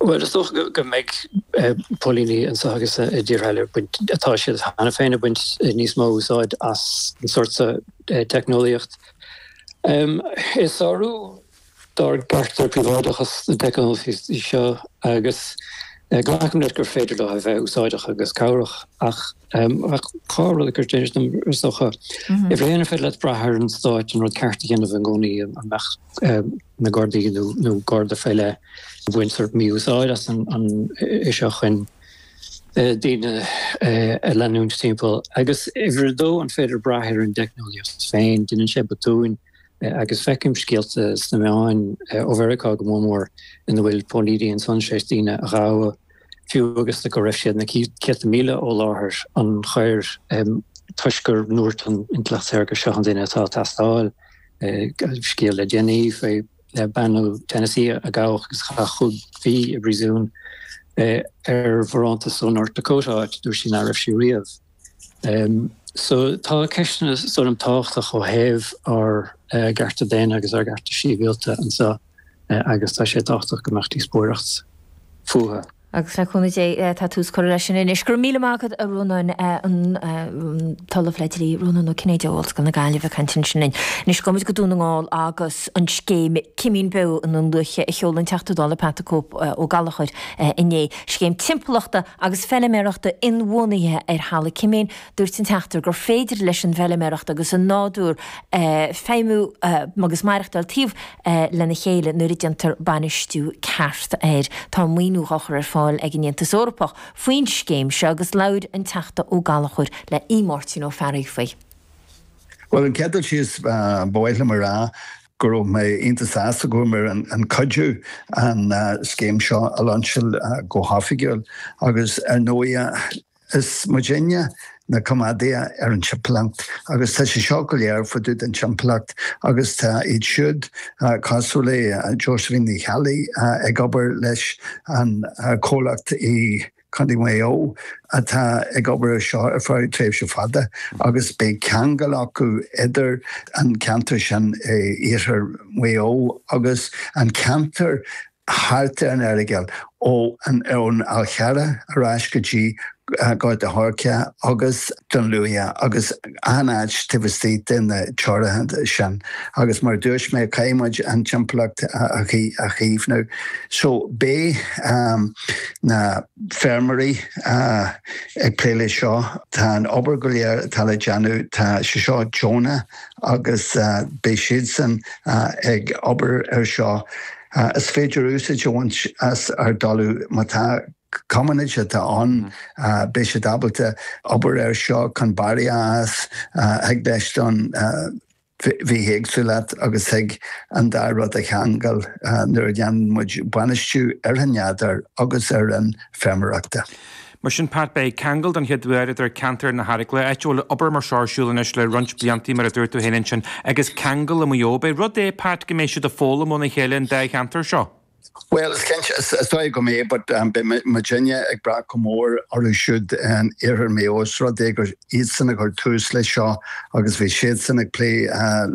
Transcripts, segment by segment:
Bhuel, is dócha go mbeidh póilíní anso agus i dtíortha eile ag baint, atá siad cheana féin ag baint níos mó úsáid as an sórt so teicneolaíocht. Is sárú dár gcearta príobháideachais na teicneolaíochtaí seo agus glacaim leis gur féidir leo a bheith úsáideach agus cabhrach ach dhá rud a chuireann isteach orm, is dócha, uimhir a haon, an féidir leat brath ar an Stát an rud ceart a dhéanamh i gcónaí, an mbeadh. na Gardaí nó Garda fé leith ag baint sórt mí-úsáid as an AI seo chun daoine a leanúint timpeall. Agus uimhir a dó, an féidir brath ar an dteicneolaíocht féin? Deineann sé botúin agus feicim scéalta sna meáin ó Mheiriceá go mór mór ina bhfuil póilíní ansan tar éis daoine a ghabháil. fiú agus go raibh siad na céadta míle ó láthair na coire, toisc gur dúirt an intleacht shaorga seo an duine atá ag teastáil. Bhí scéal le déanaí faoi bhean ó Tennessee a gabhadh agus a chaith cúig mhí i bpríosún ar bharántas ó North Dakota, áit a dúirt sí ná raibh sí riamh. So tá ceisteanna sort of tábhachtach ó thaobh ár gcearta daonna agus ár gcearta síbhialta anso agus tá sé tábhachtach go mbeadh díospóireacht fútha. Agus le cúnamh Dé tá tús curtha leis sin anois. Go raibh míle maith agat a Rónáin, an tOllamh le Dlí, Rónán Ó Cinnéide ó Ollscoil na Gaillimhe ag caint ansin linn. Anois gabhaimid go Dún na nGall agus an scéim Cimín Beo i nDún Lúiche a sheol an Teachta Dála Pat the Cope Ó Gallachóir inné. Scéim Timpeallachta agus Feilméarachta Inbhuanaithe ar Thalamh Cimín, dúirt an Teachta gur féidir leis an bhfeilméaracht agus an nádúr feidhmiú agus maireachtáil taobh lena chéile nuair a déantar bainistiú ceart air. Tá maoiniú dhá chur ar fáil ag an Aontas Eorpach faoin scéim seo agus labhair an Teachta Ó Gallachóir le Máirtín Ó Fearraigh faoi. Bhuel, an chéad dul síos ba mhaith liom a rá go raibh mé iontach sásta go raibh mé in ann cuidiú an scéim seo a lainseáil go hoifigiúil agus ar ndóigh is muidinne na coimeádaithe ar an timpeallacht agus tá sé seo go léir fá dtaobh den timpeallacht agus tá iad siúd cosúil le Josephine Uí Cheallaigh ag obair leis an comhlacht i Condae Mhaigh Eo atá ag obair ar seo ar feadh tréimhse fada agus beidh ceangal acu idir an ceantar sin in iarthar Mhaigh Eo agus an ceantar thart ar an Earagail ó an ón Fhál Carrach ar ais go dtí Gort an Choirce agus Dún Lúiche agus achan áit taobh istigh de na dtorthaí sin agus mar a dúirt mé caithfidh muid an timpeallacht a chaomhnú. So beidh na feirmeoirí ag plé leis seo, tá an obair go léir atá le déanamh, tá sé seo deonach agus beidh siadsan ag obair air seo. Is féidir úsáid a bhaint as ár dtalamh más coimíneacht atá ann. Beidh siad ábalta obair air seo chun barr a fhás. tacú leis an bhithéagsúlacht agus thig an dá rud a cheangal nuair a dhéanann muid bainistiú ar an nádúr agus ar an fheirmeoireacht. Mar sin, Pat, beidh ceangal don chéad uair idir ceantar na hEaragla, áit a bhfuil obair mar seo ar siúl anois le roinnt bliantaí, mar a dúirt tú fhéin ansin, agus ceangal le Maigh Eo. Ab é rud é, Pat, go mbeidh siad ag foghlaim óna chéile, an dá cheantar seo. Bhuel, is cinnte, is dóigh go mbeidh, but beidh muidne ag brath go mór orthu siúd in Iarthar Maigh Eo os rud é gur iadsan a chuir tús leis seo agus bhí siadsan ag plé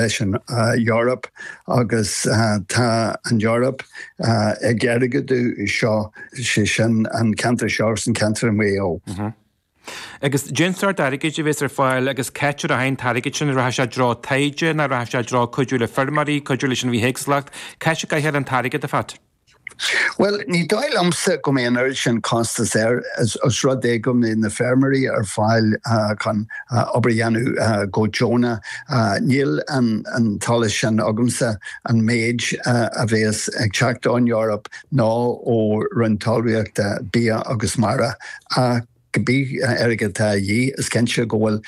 leis an Eoraip agus tá an Eoraip ag airgeadú seo, sé sin an ceantar seo agus an ceantar i Maigh Eo. Agus cén sort airgid a bhéas ar fáil agus c'áit a rachaidh an t-airgead sin, an rachaidh sé i dtreo taighde ná rachaidh sé i dtreo cuidiú le feirmeoirí, cuidiú leis an bhithéagsúlacht, c'áit a gcaithfear an t-airgead, a Phat? Bhuel, ní dóigh liomsa go mbeidh an oiread sin costais air os rud é go mbeidh na feirmeoirí ar fáil chun obair a dhéanamh go deonach. Níl an t-eolas sin agamsa an méid a bhéas ag teacht ón Eoraip nó ó Roinn Talmhaíochta, Bia agus Mara, ach cibé airgead atá a dhíth, is cinnte go bhfuil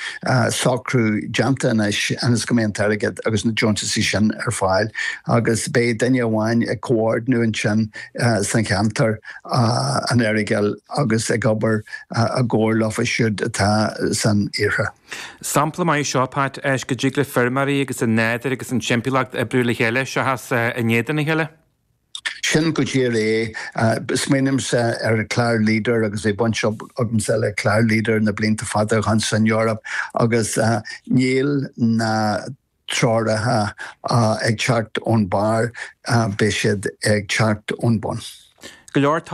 socrú déanta anois ionas go mbeidh an t-airgead agus na deontaisí sin ar fáil agus beidh duine amháin ag comhordnú ansin san cheantar an Earagail agus ag obair i gcomhar leofa siúd atá san iarthar. Sampla maith é seo, a Phat, is go dtig le feirmeoirí agus an nádúr agus an timpeallacht oibriú le chéile seachas in éadan a chéile. Sin go díreach é. Smaoinímse ar clár Leader agus bhí baint agamsa le clár Leader na blianta fada ó shin san Eoraip agus níl na treoracha ag teacht ón bharr, beidh siad ag teacht ón bun.